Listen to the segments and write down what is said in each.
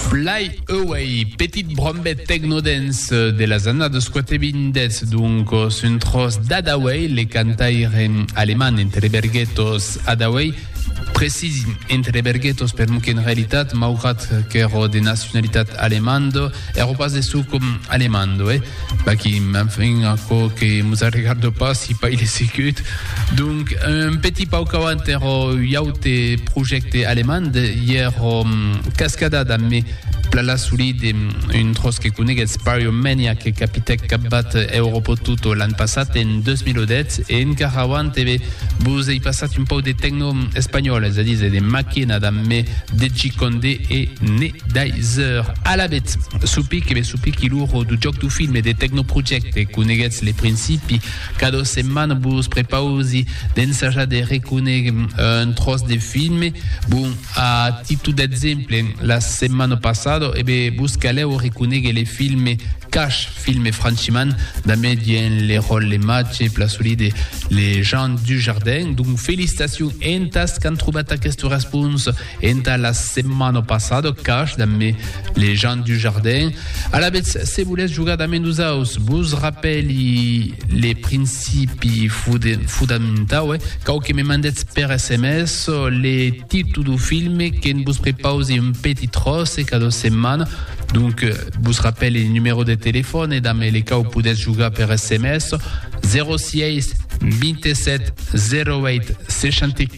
Fly Away, petit brombet tecno-dance de las annadas quatevindètz, doncos un tròç d'Hadaway, le cantaire alemand entre de berguetos Hadaway, precís entre de berguetos per'mor qu'en realitat, maugrat qu'èro de nacionalitat alemanda, èro pas de suc alemanda, eh? Vaquí, enfin, aquò que mos arregarda pas si pas il est sicut. Donc, un petit pauc avant èra ui aute projècte alemand, i èra Cascada damb me pla la solide, un tròç que coneguètz, Pyromania, que capitèc capbat Europò Tutto l'an passat, en 2010, e encara avant e be vos ei passat un pauc de tecno espanhòl, es a díser de Maquena damb me DJ Condé e Ne. Daiser alabet, supic e me supiqui l'uro du jòc du film e de Tecnoprojecte, coneguetz le principi, cada setmana vos prepausi d'ensajar de reconéguer un tròç de filme, bon, a titu d'exemple, la setmana passada, ebe, vos calèu reconéguer le filme Cash, filme franchiman dambe dien le ròl le matge plasolí de le Jean Dujardin, donc felicitacion entas qu'an trobat aquesta responsa. Entà la setmana passada, cach damb me, Lejean Dujardin. Alavetz, se volètz jogar damb e nosaus, vos rapèli le principi fodamentau, eh? Cau que me mandètz per sms le títol dau filme, que'n vos prepausi un petit tròç cada setmana. Donc, vos rapèli le numèro de telefòne damb le cau podètz jogar per sms, 06 27 08 64.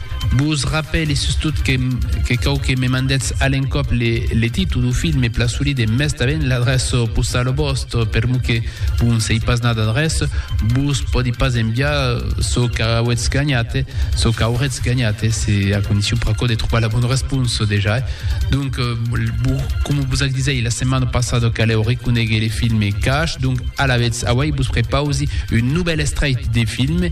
Vos rapèle sustot que cau que me mandètz a l'encòp le títol dau filme pla solida e mès tanben l'adreça postala vòstra, per lo que vos n' sei pas nat adreç, vos pòdi pas enviar çò qu'auètz ganhat, çò qu'auretz ganhat, se a condicion pr'aquò de trobar la bona responsa dejà. Donc, coma vos ac disèi la setmana passada calèu reconéguer le filme Cash, donc alavetz auèi vos prepausi un novèl estrèit de filme,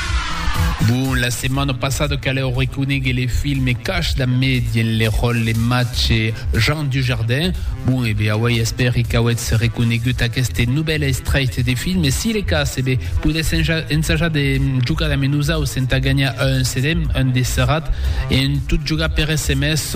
Bon, la setmana passada caleu reconéguer le filme Cash da me dien le ròl le matge Jean Dujardin. Bon, e bé, auei espèri qu'auetz reconégut aqueste novèl estrèit de filme. Si le cas, e bé, podètz ensajar de jogar damb nosaus entà ganhar un CD, un de serrat, e en tot jogar per SMS.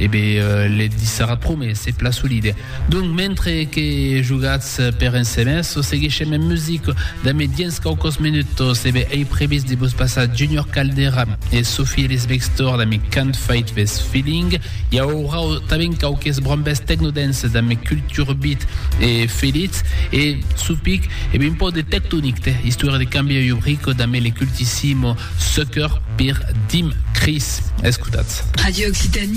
E be le dissara prome, se pla solide. Donc, mentre que jogatz per ensemès, seguishem en music damé diens quauquos minutos. E be ei previst de vos passar Junior Caldera e Sophie Ellis Bextor damé Can't Fight This Feeling. I aurà tanben quauques brombes techno-dance damé Culture Beat e Felitz. E sou pic, e be un pauc de Tectonic te, istòria de cambiar io brico damé le cultissimo Sucker per Dim Chris. Escotatz. Radio Occitanie.